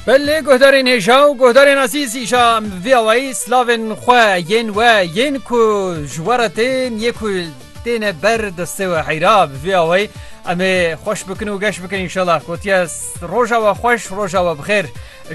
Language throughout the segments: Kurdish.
Belê guhdarên hêja û guhdarên ezîz îşa vî awayî slavên xwe yên we yên ku ji we re tên yê ku têne ber destê we heyra bi vî awayî em ê xweş bikin û geş bikin înşela gotiye roja we xweş roja we bixêr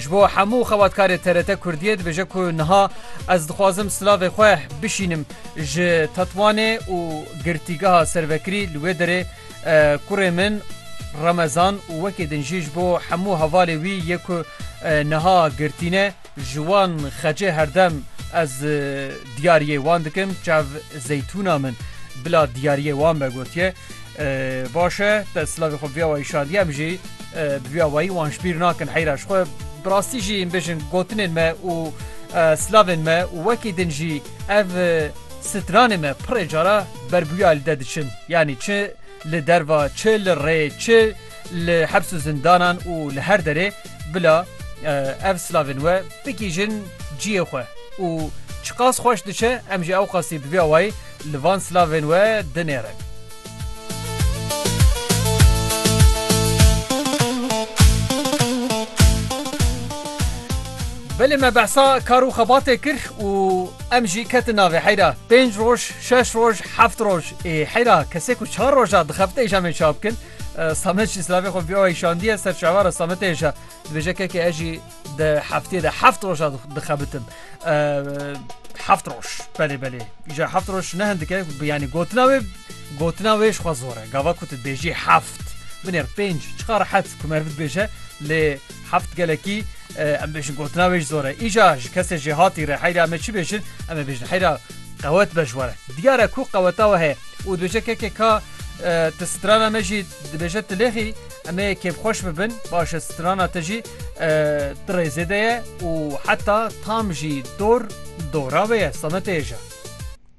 ji bo hemû xebatkarê TRT Kurdiyê dibêje ku niha ez dixwazim silavê xwe bişînim ji Tetwanê û girtîgeha servekirî li wê derê Kurê min Remezan û wekî din jî ji bo hemû hevalê wî yê ku niha girtîne ji wan xecê herdem ez diyariyê wan dikim çav zeytûna min bila diyariyê wan be gotiye baş e te silavê xwe vêya wayî şandî em jî bi vêya wayî wan ji bîr nakin heyra ji xwe bi rastî jî bijin gotinên me û silavên me û wekî din jî Ev stranê me pirê cara berbûya li de diçin. Yanî çi li derva, çi li rê, çi li heps û zindanan û li her derê bila ev slavên we bigihîjin ciyê xwe û çiqas xweş diçe em jî ewqasî bi vî awayî li van slavên we dinêrin. Belê me behsa kar û xebatê kir û em jî ketin navê heyra. Pênc roj, şeş roj, heft roj ê heyra kesê ku çar roja dixebite îşa me çap bikin. Samet jî silavê xwe bi wê şandiye ser çavara Sametê îşa. Dibêje kekê ez jî Di heftê de heft roja dixebitim. Heft roj belê belê. Îja heft roj ne hindike yanî gotina wê gotina wê ji xwe zor e. Gava ku tu bêjî heft. Binêr pênc çiqa rehet ku mer bibêje lê heft gelekî em bêjin gotina wê ji zor e. Îja ji kesê jê hatî re heyra me çi bêjin em ê bêjin heyra qewet be ji were. Diyare ku qeweta we heye û dibêje kekê ka te strana me jî dibêje tu lêxî em ê kêfxweş bibin baş e strana te jî Ti rêzê de ye û heta tam jî dor dora wê ye, Sametê ye ja.